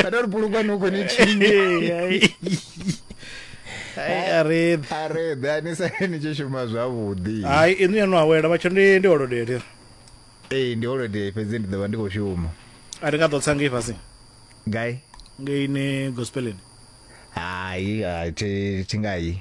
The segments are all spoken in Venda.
kana uri bhulukwa noko nechinyi arebi arebi anisai nichishuma zvavhudhi hayi inu yanu awela vatsho ndi ndi holiday leri ee ndi holiday fhedzi ndi ḓo vha ndi khou shuma a ri nga ḓo tsa ngei fhasi gai ngei ni gospeleni hayi a thi thi ngai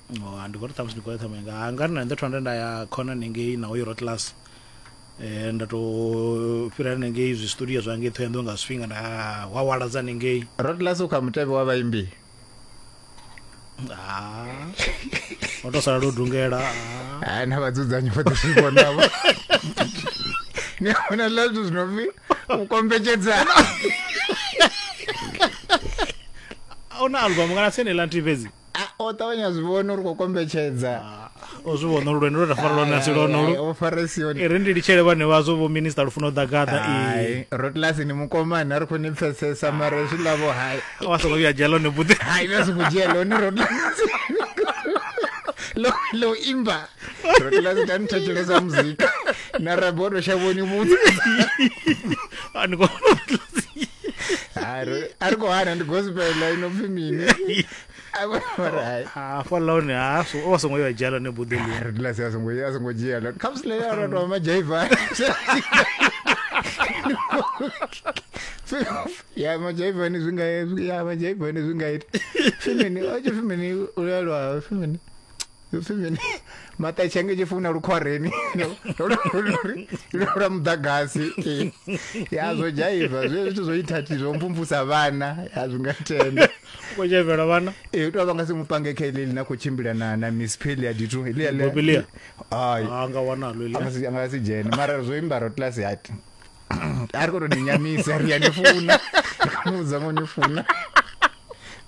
oh, ndi khou ri ṱhamusi ndi khou ya ṱhamu yanga ha nga ri na nṋe thonda nda ya khona nengei na oyo rotlas um eh, nda tou fhira nengei zwi studio zwa ngei ṱhoyando nga zwifhinga nda hwawala dza nengei rotlas u kha mutevhe wa vhaimbi ah. o tou sala lwo dungela ah. na vhadzudzanyi vho ḓi zwi vhonavho ni hona ḽa zwithu zwi no pfi u kombetshedzana ona album kana sene la nthihi fhedzi ah, o ṱavhanya zwi vhona uri khou kombetshedza ah, o zwi vhona uri lwendo lwe ra fara lwone asi lwonolu farisioni ri ndi litshele vhane vhazwo vho minista lu funa u ḓa gaḓa rotlasi ni mukomani a ri khou ni pfesesa mara zwi lavo hai wa songo vhuya dzhia lone buḓe hai na songo dzhia lone rotlasi lo lo imba rotlasi ta ni thetshelesa muzika na rabodo shavhoni vhudza a ni kona a ri khou hana ndi gospel inopfi mini hafha lone ha so- o vha songo yo a dzhia lone buḓi ḽi Re dula se a songo a songo dzhia lo kha musi leyo ro to ma jaiva ya ma jaiva ni zwinga ya ma jaiva ni zwinga ita fimini o tshi fimini u lwa fimini ipfi mini maṱetshenge tshi funa lukhwareni lwa muḓagasi ya zwo dzhaiva zwe zwithu zwo ithathi zwo mvumvusa vhana ya zwi nga tenda ko dzhaivela vhana e u tou vha nga si mupange kha iḽi na khou tshimbila na na miss peli ya dithu iḽiabobilia ai ah, nga wanalo iḽi a nga si dzhene mara zwo imbara tlasi hati a ri khou tou ni nyamisa ri ya ni funa ri khou ni vhudza ngo ni funa